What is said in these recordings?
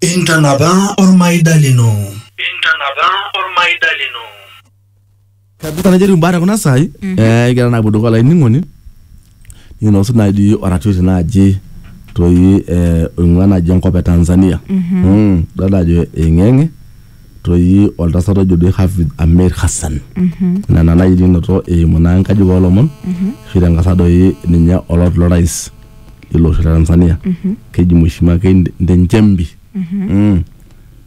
Intanapa ormaida lino. Intanapa ormaida lino. kabisa najo etiu mbaata kuna saai eh, kira naapuo dukuya olainining'oni ninosu naaji oratioti naaji toi eh, oing'ua naaji enkop e tanzania Mm, idol ajo eing'eng'e toi oltasat ojo doi hafidh amir hassan nena naaji ninoto eimu naa enkaji oolomon ashu tenkasa doi ninye olot lorais lilo osho le Tanzania Mhm. keji Mheshimiwa Keinde Nchembi Mhm. Mm.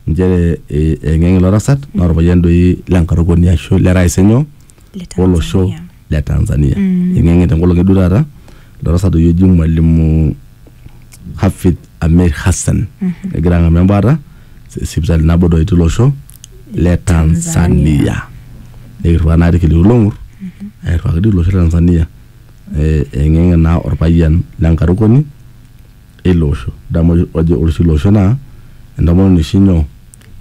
nchere eh, eng'eng ilo tasat naa orpayian doi lenkarukoni ashu le rais enyo Le olosho Tanzania. le Tanzania Mm. eng'eng'e tenkolong eduo taata ilo tasat doi oji mwalimu Hafidh Amir Hassan Mhm. egira ang'amu embaata si- sipitali nabo doi tilo osho le Tanzania Tanzania. nikirriwaa naa irkiliku long'ur airriwaki doi ilo osho le Tanzania eng'eng'e naa orpayian lenkarukoni eilo osho damu ojo ore oshi ilo osho naa entomononi oshi nyoo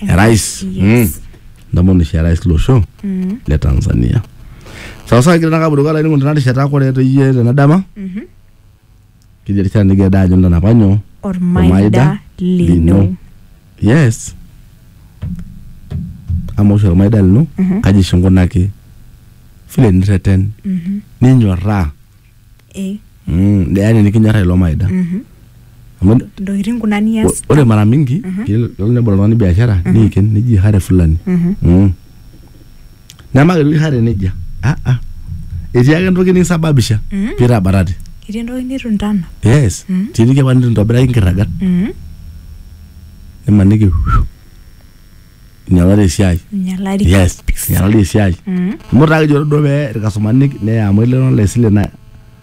erais mm. entomononi oshi erais ilo osho le tanzania sawasawa kigira nakaburuka laining'oni tena rishata kore toyie tena dama keji erishata nigira daa ajo ntanapa nyoo ormaida lino yes ama oshi ormaida lino Mhm. kaji oshi inkunaki vile nirreten Mhm. ninyorraa Eh, mm, yaani nikinyorraa ilo maida mhm. amu ntokitin kuna nias ore mara mingi Mhm. kelo nebol oltung'ani biashara Mhm. niiken neji hare fulani Mhm. mm. Nemaketu Ihare nejia. Ah, ah. Etii ake entoki nisababisha Mm. pee itabatate. Etii entoki nitu intana. Yes. Mm. Etii eniki apa nitu intobiraki nkirragat. Mm. Nimaniki whew, inyalari esiai. Inyalari. Yes. Inyalari esiai. Mm. Amu taa kejo duo pee irkastomani neya amu elelero le sile na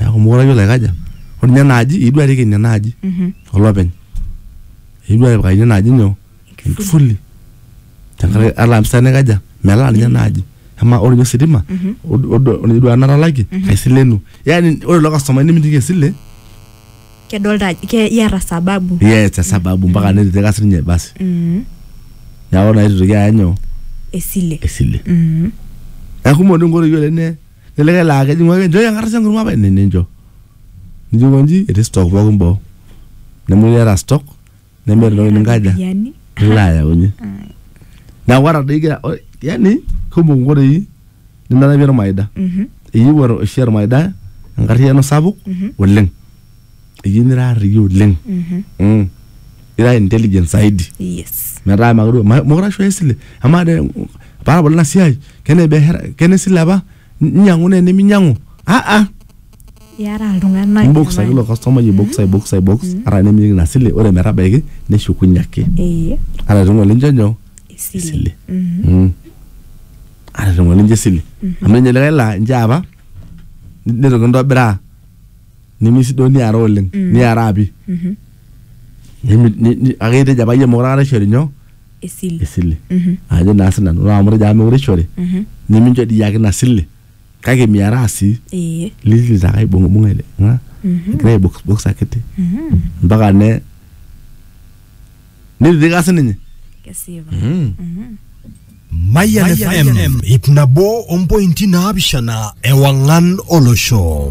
neeku mokure ayiolo aikaja ore ninye enaaji eyieu arik ina naaji Mhm. olopeny eyieu atipikaki ina naaji nyoo enkifuli tenkaraki ata mpisai naikaja melaa ninye enaaji amaa ore ninye ositima od- od- ore ninye duo enatalakie kaisilenu yani ore ilo kastomai nimitiki esile kedolta ajo ke- iyata sababu yes esababu mpaka nititira sininye basi Mhm. neeku naa itu itoki aya nyoo esile esile Mhm. neeku kumok doi nkoitoi oleng ne Leleke laa kejing'u ake enchoo enkarasha enkurma apa ene nincho. Nijo konji etii stock pookin boo. Nemetii iyata stock nemeeta entoki ninkaja Iropiyiani. nilo ayaunye. Ai. Neeku ata doi igira yaani kumok inkoitoi ninarapie ormaida. Mhm. Eyieu oshi ormaida enkarriyiano sapuk oleng. iyie nira arriyia oleng mm. ira intelligent zaidi yes metaa makure ma- mokure ashoyo esile amaa te paabol ina siai kene biashara kene sile apa inyiang'u naa eneminyang'u aa iara iltung'anak imbokis ake ilo jamani. kastomai aibokis aibokis aibokis ata nemeyieu ina sile ore metabaiki neshukunye ake Ee, ata ting'o lincho nyoo esile. esile Mm. ata ting'o lincho esile amu ninye likae laa inche apa nitoki intobiraa nemesidoo niara oleng niara api Nemi- ni- ni- ake itejo apa iyie mokure akata ishori nyoo esile esile ajo naa sinanu ore amu itejo apa mekure ishori nimincho dii iyaki ina sile kake miaraa sii ee liliti ake aibung'ibung'a ele ng'a egira aibokisbokis akiti mpaka ne nititika sininye kesipa Mayan FM, ip nabo ompointi naapishana ewang'an olosho.